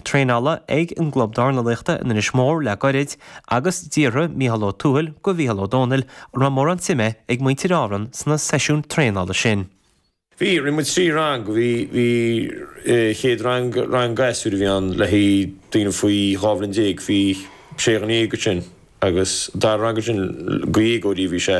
Traenála ag an gClub Dornálaíochta in Inis Mór le gairid agus d'fhiafraigh Mícheál Ó Tuathail de Mhícheál Ó Domhnaill an raibh mórán suime ag muintir Árann sna seisiúin traenála sin. Bhí, rinne muid trí rang, bhí, bhí chéad rang, rang gasúir a bhí ann le haghaidh daoine faoi dhá bhliain déag, bhí sé dhuine déag acu sin agus an dara rang ansin, déagóirí a bhí sé.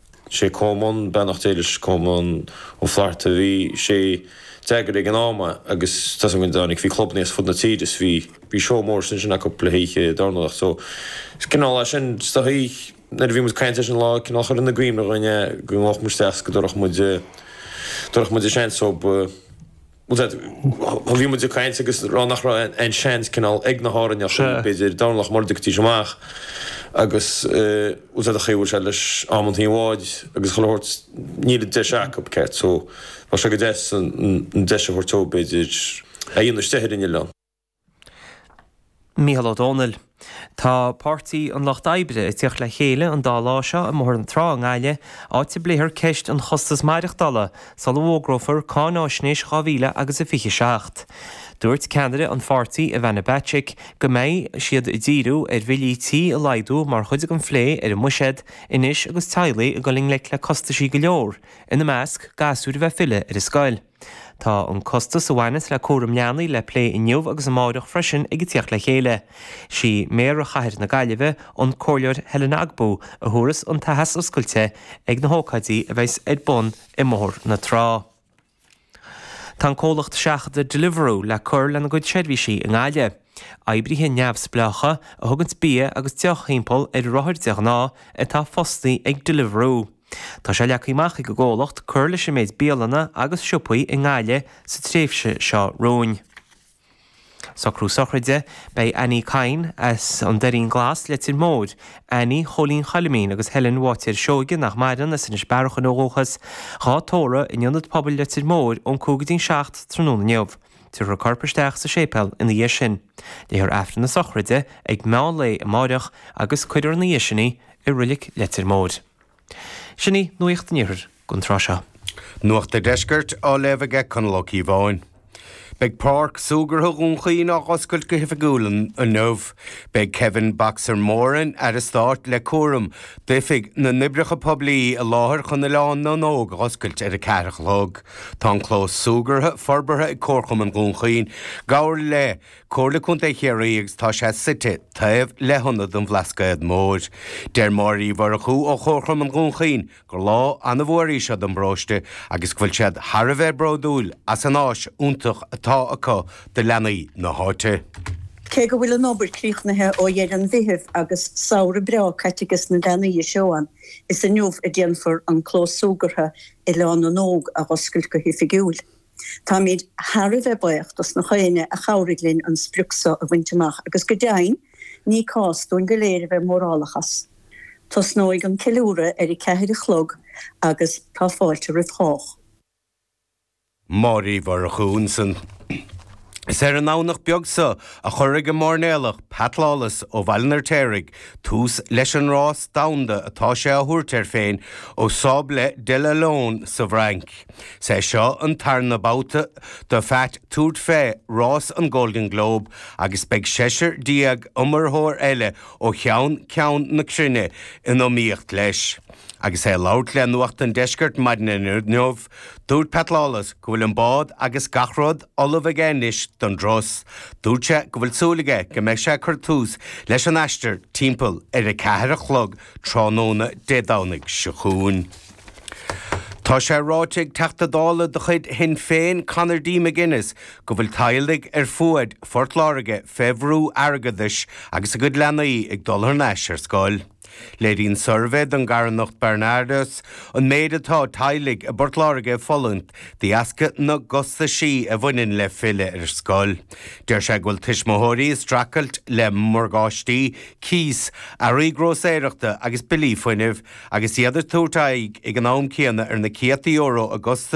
Sé Cónan beannacht Dé leis Cónan Ó Flatharta bhí sé dhá eagrú ag an am é agus tá a fhios agam go dtáinig bhí clubanna as fud na tíre is bhí bhí seó mór ansin acu le hoíche dar ndóigh so is cineál é sin is dóichí nuair a bhí muid caint air sin lá cineál chuir... go nglaofadh muid isteach go dtabharfadh muid dtabharfadh muid an seans so ba Bhí muid ag caint agus rá nach raibh aon seans cineál ag na hÁrainneachaí, b'fhéidir, dornálaíocht mura dtiocfaidís amach agus chaithfeadh sé bhuail sé leis amanntaí an bháid agus chuile shórt níl an deis acu, céard so, bheadh sé go deas an deis a thabhairt dóibh, b'fhéidir, iad féin istigh ar an oileán. Mícheál Ó Domhnaill. Tá Páirtí an Lucht Oibre ag tiocht le chéile an dá lá seo i mBóthar na Trá i nGaillimh, áit a bpléifear ceist an chostas maireachtála sula bhfógrófar cáinaisnéis dhá mhíle agus a fiche seacht. Dúirt ceannaire an pháirtí, Ivana Bacik, go mbeidh siad ag díriú ar bhillí tí a laghdú mar chuid den phlé ar an mbuiséad anois agus teaghlaigh ag dul i ngleic le costaisí go leor, ina measc, gasúir a bheith ag filleadh ar an scoil. Tá an costas a bhaineas le cúram leanaí le plé inniu agus amáireach freisin ag an tíocht le chéile. Sí Méara Chathair na Gaillimhe, an Comhairleoir Helen Ogbu, a thabharfas an t-aitheasc oscailte ag na hócáidí a bheidhs ar bun i mBóthar na Trá. Tá an comhlacht seachadta Deliveroo le cur lena gcuid seirbhísí i nGaillimh. Oibrithe neamhspleácha, a thuganns bia agus deoch timpeall ar rothair de ghnáth, atá fostaí ag Deliveroo. Tá sé leagtha amach ag an gcomhlacht cur leis an méid bialanna agus siopaí i nGaillimh sa tréimhse seo romhainn. Socrú sochraide, Beidh Annie Kyne as an Doirín Glas, Leitir Móir, Annie Chóilín Choilimín agus Helen Bháitéir Seoige, nach maireann, as Inis Bearachain ó dhúchas, dhá tórramh in Ionad Pobail Leitir Móir ón 5 go dtí'n 7 tráthnóna inniu. Tiúrfar corp isteach sa séipéal ina dhiaidh sin. Léifear Aifreann na sochraide ag meán lae amáireach agus cuirfear ina dhéis sin í i Reilig Leitir Móir. Sin í nuacht an Iarthair don tráth seo. Nuacht an Deiscirt á léamh aige Conall Ó Cíobháin. Beidh Páirc Súgartha Dhún Chaoin á dh'oscailt go hoifigiúil inniu. Beidh Kevin 'Boxer' Moran, Aire Stáit le cúram d'Oifig na nOibreacha Poiblí i láthair chun Oileán na nÓg a dh'oscailt ar a ceathair a chlog. Tá an clós súgartha forbartha ag Comharchumann Dhún Chaoin, i gcomhar le. Comhairle Contae Chiarraí agus tá sé suite taobh le hIonad an Bhlascaod Mhóir. Deir Máire Uí Mhurchú ó Chomharchumann Dhún Chaoin gur lá an-mhór í seo don bparóiste agus go bhfuil siad thar a bheith bródúil as an áis iontach atá acu do leanaí na háite. Cé go bhfuil an obair críochnaithe ó dheireadh an Mheithimh agus samhradh breá caite ages na leanaí ag seó ann, is inniu a déanfar an clós súgartha Oileán na nÓg a dh'oscailt go hoifigiúil. Táimid thar a bheith baoch do gach éinne a chabhraigh linn an sprioc seo a bhaint amach agus go deimhin ní cás dúinn go léir a bheith mórálach as. Tosnóidh an ceiliúradh ar a ceathair a chlog agus tá fáilte roimh chách. Máire Uí Mhurchú ansan. Is ar an nDomhnach beag so a chuirfidh an máirnéalach Pat Lawless ó Bhaile an Fheirtéaraigh tús leis an rás domhanda atá sé á thabhairt air féin ó Les Sables d'Olonne sa bhFrainc. Is é seo an tarna babhta do Phat tabhairt fé rás an Golden Globe agus beidh seisear déag iomaitheoir eile ó cheann ceann na cruinne in iomaíocht leis. Agus é ag labhairt le Nuacht an Deiscirt maidin inniu, dúirt Pat Lawless go bhfuil an bád agus gach rud, Ullamh aige anois don rás. Dúirt sé go bhfuil súil aige go mbeidh sé ag cur tús leis an aistear timpeall ar a ceathair a chlog tráthnóna Dé Domhnaigh seo chugainn. Tá sé ráite ag Teachta Dála de chuid Shinn Féin, Conor D. McGuinness, go bhfuil teaghlaigh ar fuaid Phort Láirge fé bhrú airgeadais agus a gcuid leanaí ag dul thar n-ais ar scoil. Léiríonn suirbhé don gcarthanacht Barnardos an méid atá teaghlaigh i bPort Láirge ag fulaingt de dheasca na gcostaisí a bhaineann le filleadh ar scoil. Deir sé go bhfuil tuismitheoirí ag streachailt le morgáistí, cíos, earraí grósaeireachta agus billí fuinnimh agus iad ag tabhairt aghaidh ag an am céanna ar na céadta euro i gcostais